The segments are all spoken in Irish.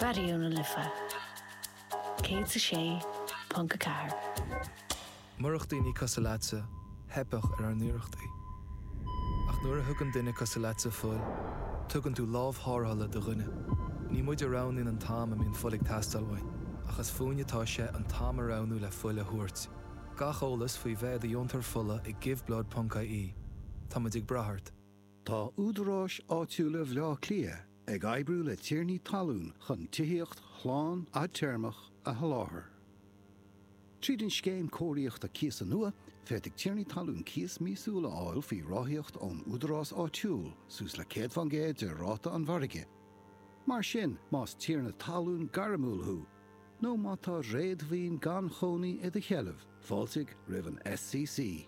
Raidió na Life 106.4. Murach daoine cosúil leatsa, theipfeadh ar ár n-iarrachtaí. Ach nuair a thugann duine cosúil leatsa fuil, tugann tú lámh tharrthála do dhuine. Ní muid a roghnaíonn an t-am a mbíonn fuil ag teastáil uainn, ach is fúinn atá sé an t-am a roghnú le fuil a thabhairt. Gach eolas faoi bheith i do dheontóir fola ag Give Blood ponc IE. Tá muid ag brath ort. Tá údaráis áitiúla Bhaile Átha Cliath ag oibriú le tiarnaí talún chun tithíocht shlán fhadtéarmach a sholáthar. Tríd an scéim cóiríochta cíosa nua, féadfaidh tiarnaí talún cíos míosúil a fháil faoi ráthaíocht ón údarás áitiúil suas le 100 fán gcéad de ráta an mhargaidh. Mar sin, más tiarna talún gairmiúil thú nó má tá réadmhaoin gan chónaí i do sheilbh, fáiltigh roimh an SCC.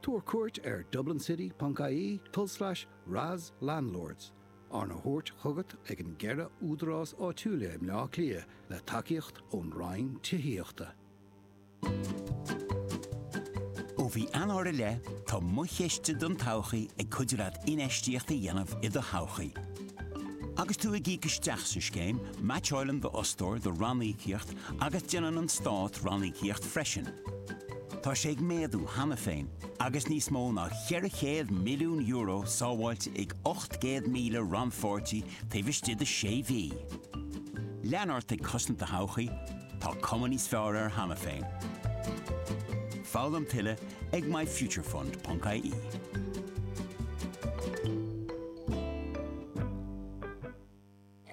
Tabhair cuairt ar dublincity.ie forward slash ras landlords, arna thabhairt chugat ag an gceithre údarás áitiúla i mBleá Cliath le tacaíocht ón Roinn Tithíochta. Ó mhí Eanáir i leith, tá mo chiste don todhchaí ag cuidiú leat infheistíocht a dhéanamh i do thodhchaí. Agus tú ag íoc isteach sa scéim, meaitseálann d'fhostóir do ranníocaíocht agus déanann an Stát ranníocaíocht freisin. Tá sé ag méadú cheana féin agus níos mó ná €400 milliún sábháilte ag 800,000 rannpháirtí taobh istigh de sé mhí. Lean ort ag cosaint do thodhchaí, tá cuma níos fearr air cheana féin. Foghlaim tuilleadh ag myfuturefund.ie.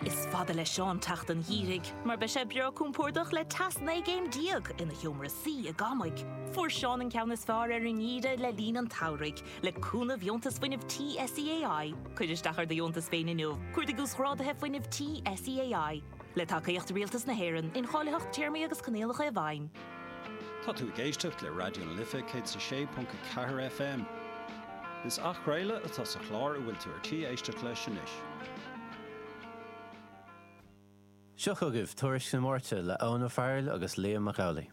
Is fada le Seán teacht an gheimhridh, mar beidh sé breá compordach le teas 19 gcéim ina sheomra suí i gCamaigh. Fuair Seán an ceann is fearr ar an ngeimhreadh le linn an tsamhraidh, le cúnamh dheontas fuinnimh SEAI. Cuir isteach ar do dheontas féin inniu, cuardaigh uasghráduithe fuinnimh SEAI, le tacaíocht Rialtas na hÉireann, incháilitheacht téarmaí agus coinníollacha i bhfeidhm. Tá tú ag éisteacht le Raidió na Life 106.4 FM. Is athchraoladh atá sa chlár a bhfuil tú ar tí éisteacht leis anois. Seo chugaibh Tuairisc na Máirte le Eoin Ó Fearghail agus Liam Mac Amhlaigh.